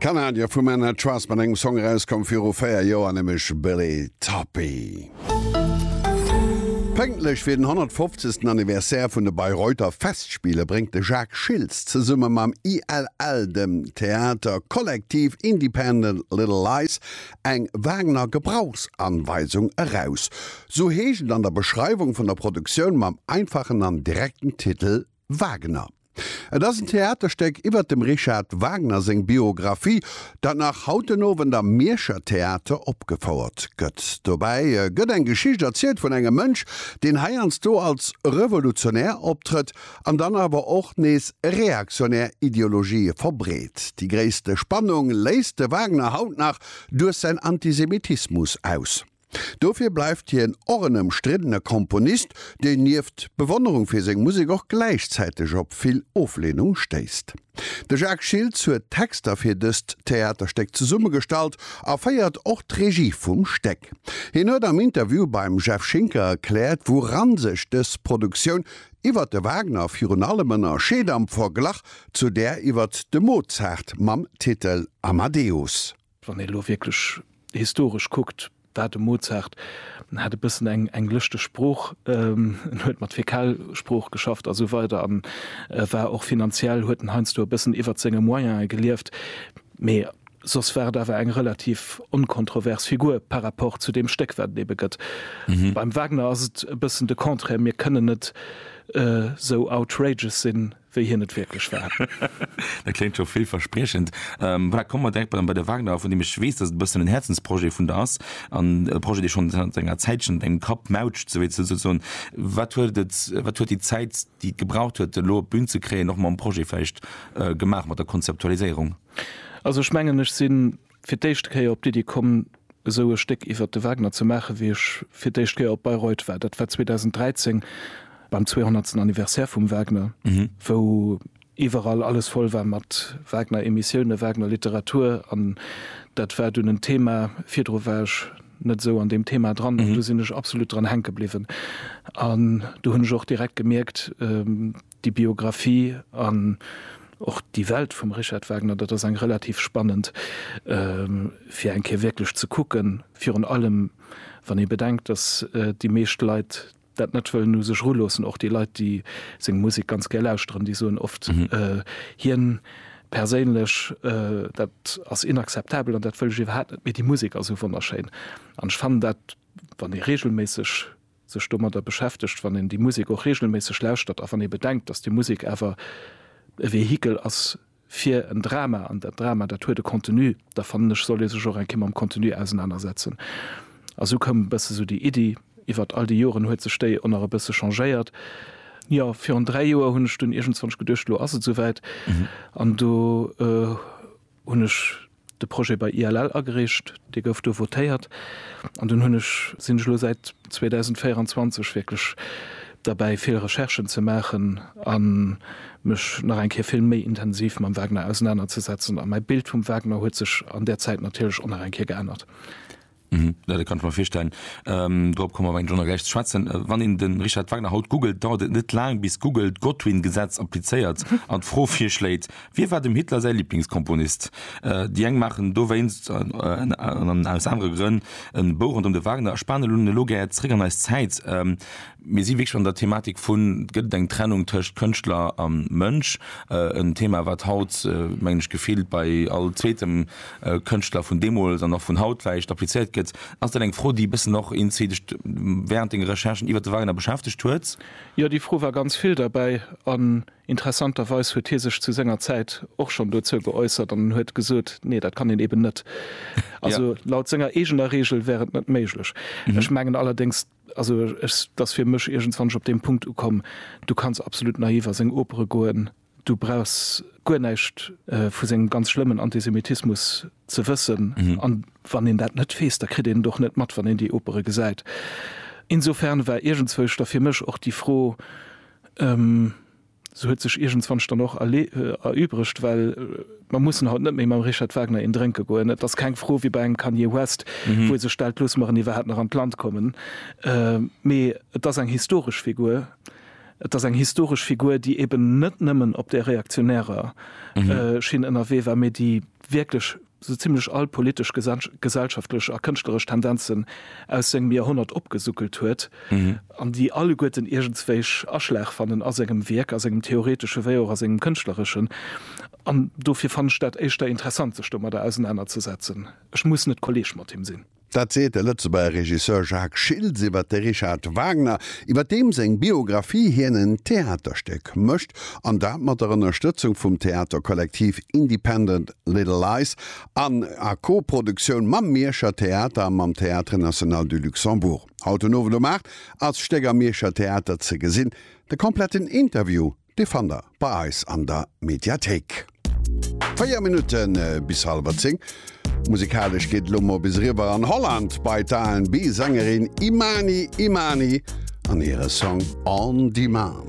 D'Kanadier vu Men At Trust mat engem Song erauskomm viru 4 Joer, nämlech Billy Toppie. Pënktlech fir den 150. Anniversaire vun de Bayreuther Festspiele bréngt de Jacques Schiltz zesumme mam ILL, dem Theater Collectif Independent Little Lies, eng Wagner Gebrauchsanweisung eraus. Sou heescht et an der Beschreiwung vun der Produktioun mam einfachen an direkten Titel Wagner. Et ass en Theaterstéck iwwert dem Richard Wagner seng Biographie, dat nach haut den Owend am Mierscher Theater opgefouert gëtt. Dobäi gëtt eng Geschicht erzielt vun engem Mënsch, deen heiansdo als Revolutionär optrëtt an dann awer och nees reaktionär Ideologië verbreet. Déi gréisste Spannung léisst de Wagner haut nach duerch säin Antisemitismus aus. Dofir bleift hien och en ëmstriddene Komponist, deen nieft Bewonnerung fir seng Musek och gläichzäiteg op vill Ofleenung stéisst. De Jacques Schiltz huet d'Texter fir dëst Theaterstéck zesummegestallt a féiert och d'Regie vum Stéck. Hien huet am Interview beim Jeff Schinker erkläert, wouran sech dës Produktioun iwwert de Wagner virun allem ënnerscheet am Verglach zu där iwwert de Mozart mam Titel Amadeus. Wann ee lo wierklech historesch kuckt, war de Mozart, en hat e bëssen eng eng lëschteg Sprooch, en huet mat Fäkalsprooch geschafft a sou weider an e war och finanziell, huet en heiansdo e bëssen iwwert senge Moyene gelieft, mee soss war et awer eng relativ onkontrovers Figur par rapport zu deem Stéck, wat et ebe gëtt. Beim Wagner ass et e bëssen de Contraire, mir kënnen net esou outrageous sinn, wéi hien et wierklech war. Dat kléngt scho villverspriechend. Voilà, komme mer direkt bei de Wagner, vun deem ech weess, dass et e bëssen en Häerzensprojet vun der ass an e Projet, dee schonn zanter enger Zäitchen op engem Kapp mautscht, sou wéi ze soen. Wat huet et, wat huet déi Zäit, déi et gebraucht huet, elo op d'Bün ze kréien, och mam Projet vläicht gemaach, mat der Konzeptualiséierung? Also ech mengen, ech sinn fir d'éischt Kéier op d'Iddi komm, esou e Stéck iwwert de Wagner ze maachen, wéi ech fir d'éischt Kéier op Bayreuth war. Dat war 2013 beim zweehonnertsten Anniversaire vum Wagner, wou iwwerall alles voll war mat Wagner-Emissiounen, Wagner-Literatur. An dat war dunn en Thema. Virdru war ech net esou an deem Thema dran. An do sinn ech absolut dran hänke bliwwen. An do hunn ech och direkt gemierkt, Déi Biographie an och déi Welt vum Richard Wagner, dat ass eng relativ spannend, fir eng Kéier wierklech ze kucken. Virun allem, wann ee bedenkt, datt déi meescht Leit dat net wëllen u sech eruloossen. Och déi Leit, déi seng Musek ganz gär lauschteren, déi soen oft, hien perséinlech, dat ass inakzeptabel an dat wëll ech iwwerhaapt net, mee déi Musek ass esou wonnerschéin. An ech fannen dat, wann ee reegelméisseg. sech domadder beschäftegt, wann een déi Musek och reegelméisseg lauschtert a wann ee bedenkt, datt déi Musek awer e Vehikel ass fir en Drama, an dat Drama, dat huet e Contenu, da fannen ech, soll ee sech och eng Kéier mam Contenu ausenanersetzen. A sou koum e bësse sou déi Iddi. Iwwert all déi Joren huet sech déi och nach e bësse changéiert. Jo, virun dräi Joer hunn ech dunn iergendzwann geduecht, elo ass et souwäit, an do hunn ech de Projet bei ILL agereecht, dee gouf do votéiert an dunn hunn ech, sinn ech elo säit 2024 wierklech derbäi vill Recherchen ze maachen a mech nach eng Kéier vill méi intensiv mam Wagner ausenanerzesetzen a mäi Bild vum Wagner huet sech an där Zäit natierlech och nach eng Kéier geännert. Mhm, ja, dat kann ech mer virstellen. Ähm, dorop kommen wir eng Journal gleich zu schwätzen. Äh, wann een den Richard Wagner haut googelt, dauert et net lang, bis Google d'Godwin-Gesetz applizéiert an d'Fro virschléit, Wie war dem Hitler säi Lieblingskomponist? Äh, déi eng maachen dowéinst, äh, an aus anere Grënn, en Bou rondëm de Wagner a spanen elo gär zréck an eis Zäit. Ähm, Mir si wierklech an der Thematik vun, gëtt et eng Trennung tëscht Kënschtler a Mënsch? En Thema, wat haut, mengen ech, gefillt bei all zweetem Kënschtler vun deemools an och vun haut vläicht applizéiert gëtt. Ass dat eng Fro, déi e bëssen och Insi dech wärend denger Recherchen iwwert de Wagner beschäftegt huet? Jo, déi Fro war ganz vill derbäi. An interessanterweis huet hie sech zu senger Zäit och schonn dozou geäussert an huet gesot, Nee, dat kann een eeben net. Also laut senger eegener Reegel wär et net méiglech. Ech mengen allerdéngs, Also ech, dass fir mech iergendswann ech op deem Punkt ukomm, du kanns absolut naiv a seng Opere goen, du brauchs guer näischt vu sengem ganz schlëmmen Antisemitismus ze wëssen, a wann een dat net weess, da kritt een et och net mat, wann een déi Opere gesäit. Insofern war iergendzwousch da fir mech och déi Fro, Se huet sech iergendzwanch dann och erübregt, well mer mussen haut net méi mam Richard Wagner een drénke goen. Et ass keng Fro wéi bei engem Kanye West, wou e sech stellt, Loosse mer en iwwerhaapt nach an d'Land kommen? Mee et ass eng historesch Figur. Et ass eng historesch Figur, déi eben net nëmmen op där reaktionärer Schinn ënnerwee war, mee déi wierklech sou zimlech all politesch, gesellschaftlech a kënschtleresch Tendenzen aus sengem Joerhonnert opgesuckelt huet, an déi alleguerten iergendswéich Aschlag fannen a sengem Wierk, a sengem theoretesche wéi och a sengem kënschtlereschen. An dofir fannen ech dat éischter interessant, sech domadder ausenanerzesetzen. Ech muss net Kolleeg mat him sinn. Dat seet de Lëtzebuerger Regisseur Jacques Schiltz iwwer de Richard Wagner, iwwer deem seng Biographie hien en Theaterstéck mécht, an dat mat der Ënnerstëtzung vum Theaterkollektiv Independent Little Lies an a Co-Produktioun mam Mierscher Theater a mam Théâtre National du Luxembourg. Haut den Owend um 8 ass d'Stéck am Mierscher Theater ze gesinn. De kompletten Interview Déi fannt der bei eis an der Mediathéik. Véier Minutte bis hallwer zéng. Musikalesch geet et elo mol bis eriwwer an Holland bei d'R&B-Sängerin Imani Imani an hire Song On Demand.